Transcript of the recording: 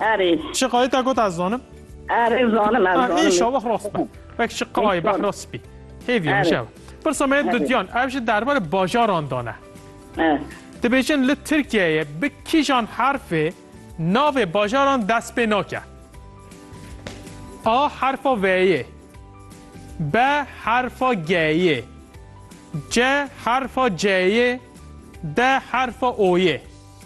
Erê. Çiqayê te got ez zanim. Erê zanim ez zanim. Îşa wex rast be. Wek çiqayê behra spî. Hêviya min şev. Pirsa me dudyan ev ji derbarê bajaran dane. Dibêjin li Tirkiyeyê bi kîjan herfê navê bajaran dest pê nake. A herfa V'yê. B herfa G'yê. C herfa C'yê. D herfa O'yê.